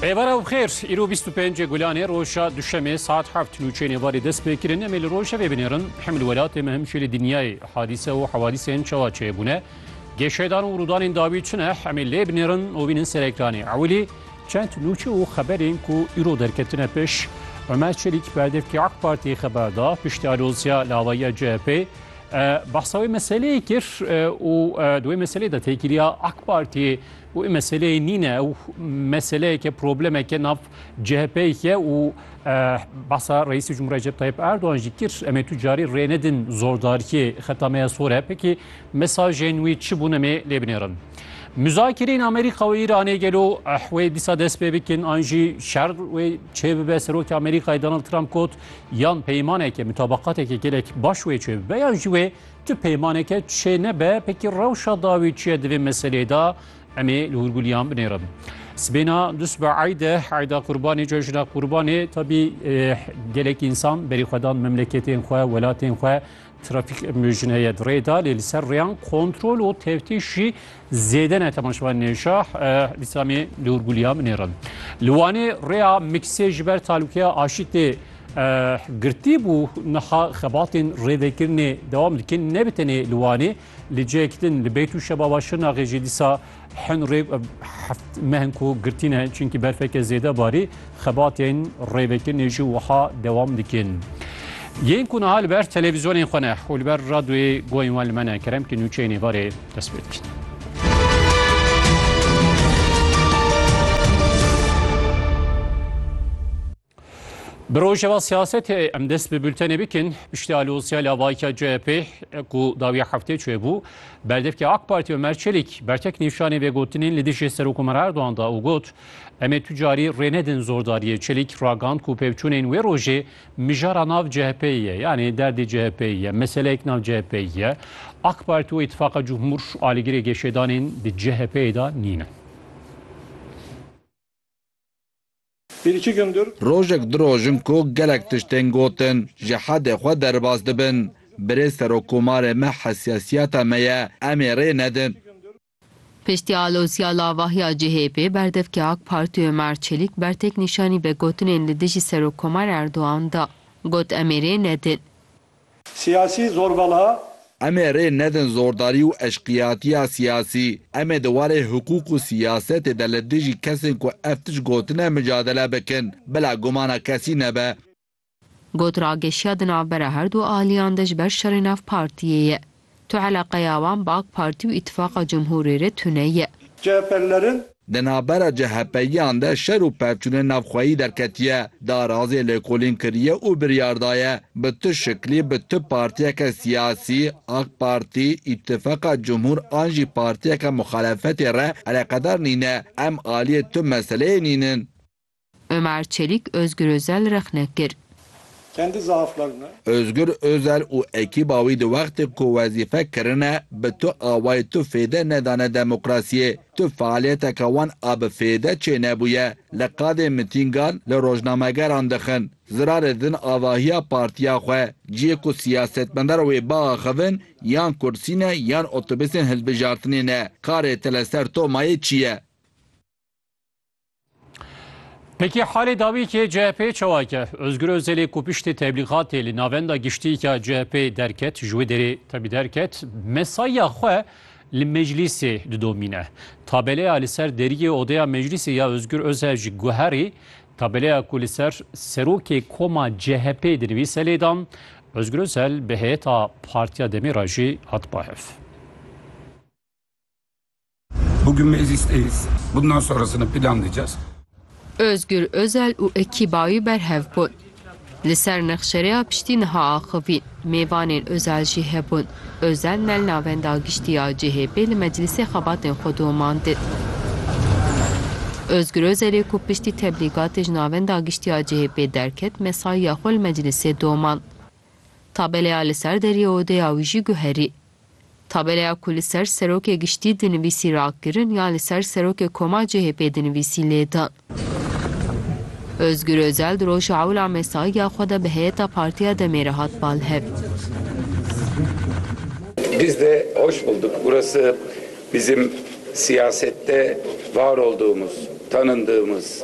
Êvara û xêr, îro bîst û pêncê Gulanê roja Duşemê saet heft nûçeyên êvarê dest pê kirin. Em ê li rojevê binêrin hem li welatê me hem jî li dinyayê hadîse û hewadîsên çawa çêbûne, geşedan û rûdanên dawî çi ne em ê lê binêrin û bînin ser ekranê. Ewilî çend nûçe û xeberên ku îro derketine pêş. Omer Çelîk berdevkê AK Partiyê xeber da, piştî alozya li avahiya CHP'ê Behsa wê meseleyê kir û di wê meseleyê de tê kiriya AK Partiyê û ê meseleyê nîne ew meseleyeke problemeke nav CHPyê û behsa Reîsê Cumhuriyê Recep Tayyip Erdogan jî kir em ê tu carî rê nedin zordariyê xeta me ya sor e pekî mesajên wî çi bûn em ê lê binêrin. Muzakirên Amerîka û Îranê gelo wê dîsa dest pê bikin an jî şer wê çê bibe Serokê Amerîkayê Donald Trump got Yan peymaneke mutabeqateke gelek baş wê çê bibe yan jî wê tu peymaneke çê nebe pekî rewşa dawî çi ye di vê meseleyê de em ê li hûrgulîyan binêrin. Sibêna du sibe eyde eyda qurbanê cejna qurbanê tabî gelek însan berî xwe dan memleketên xwe welatên xwe Trafîk mejin heye di rê de lê li ser rêyan kontrol û tevtîş jî zêde ne te şivan nêşah Lîslamê Nur Gulya min nêrin. Li Wanê rêya miksê ji ber talûkeya aşî tê girtî bû niha xebatên rêvekirinê dewam dikin ne bi tenê li Wanê Li cihekî din li Beyt û Şebaba Şirnaxê jî dîsa hin rê heft mehin ku girtîne çunkî berfeke zêde barî xebatên rêvekirinê jî wiha dewam dikin. Yên ku niha li ber televîzyonên xwe ne û li ber radyoyê guhên wan li me ne kerem ki nûçeyên êvarê dest pê dikin. Bi rojeva siyasetê em dest bi bültenê bikin. Piştî alozya lavayîka CHP'ê ku dawiya heftê çê bû, berdevkê AK Partî Omer Çelîk bertek nîşanî vê gotinên li dijî Serokkomar Erdogan da û got, Em ê tu carî rê nedin zordariyê. Çelîk ragand ku pevçûnên wê rojê mijara nav CHP'ê ye. Yanî derdê CHP'ê ye, meseleyek nav CHP'ê ye. AK Partî û Îtîfaqa Cumhur alîgirê geşedanên di CHP'ê da nîn in. Bir iki gündür. Rojek du roj in ku gelek tişt tên gotin, ji hedê xwe derbas dibin. Birê Serokkomarê me hesiyasiyata me ye, em ê rê nedin. Piştî alozîya lavahiya CHP'ê, berdevkê AK Partî Omer Çelîk bertek nîşanî vegotinên li dijî Serokkomar Erdogan da. Got em ê rê nedin. Siyasî zorbalha. Em ê rê nedin zordarî û eşqiyatiya siyasî. Em ê di warê hiqûq û siyasetê de li dijî kesên ku ev tişt gotine micadele bikin. Bila gumana kesî nebe. Got rageşiya di navbera herdu aliyan de ji ber şerê nav partiyê ye. Tu eleqeya wan bi ak Partî û Îtîfaqa Cumhûrê re tune ye. CHP'lilerin. Di navbera CHP'yiyan de şer û pevçûnên navxweyî derketiye. Darazê lêkolîn kiriye û biryar daye bi tu şiklî bi tu partiyeke siyasî, ak Partî, Îtîfaqa Cumhûr an jî partiyeke muxalefetê re eleqedar nîne, em aliyê tu meseleyê nînin. Ömer Çelik Özgür Özel rexne kir. Kendi zaaflarını. Özgür Özel û ekîba wî di wextê ku wezîfe kirine bi tu awayê tu fêde nedane demokrasiyê, tu fealiyeteke wan a bi fêde çênebûye, li qadê mitîngan li rojnamegeran dixin, zirarê didin avahiya partiya xwe, ciyê ku siyasetmendar wê biaxivin yan kursî ne yan otobusên hilbijartinê ne, karê te li ser Tomayê çi ye? Peki halê dawî ki CHP çewake Özgür Özelê ku piştê tebligatê li navenda giştîka CHP derket ji wê derê tebî derket mesaya xwe li meclîsê didomîne. Tabeleya li ser deriyê odeya meclîsê ya Özgür Özel ji guherî tabeleya ku li ser serokê koma CHP dinivîse lêdan Özgür Özel bi heyeta Partiya Demê re jî hat bahev. Bugün meclisteyiz. Bundan sonrasını planlayacağız. Özgür Özel û ekîba wî berhev bûn. Li ser nexşereya piştî niha axivîn. Mêvanên Özel jî hebûn. Özel nel navenda giştî ya CHP'ê li meclisê xebatên xwe domandin. Özgür Özelê ku piştî teblîgatê ji navenda giştî ya CHP'ê derket mesaiya xwe li meclisê domand. Tabeleya li ser deriyê odeya wî jî guherî. Tabeleya ku li ser Serokê Giştî dinivîsî rakirin ya li ser Serokê Koma CHP'ê dinivîsî lê da. Ozgur Ozel di roja ewla mesaiya xwe de bi heyeta Partiya DEM'ê re hat balhev. Biz de hoş bulduk. Burası bizim siyasette var olduğumuz, tanındığımız,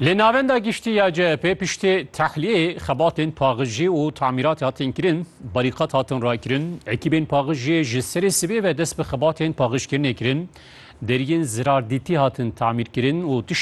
Li navenda giştî ya CHP piştî tehliyê xebatên paxijî û tamîrat hatin kirin, barîqat hatin rakirin, ekîbên paxijiyê ji serê sibê ve dest bi xebatên paxijkirinê kirin, deriyên zirardîtî hatin tamîrkirin û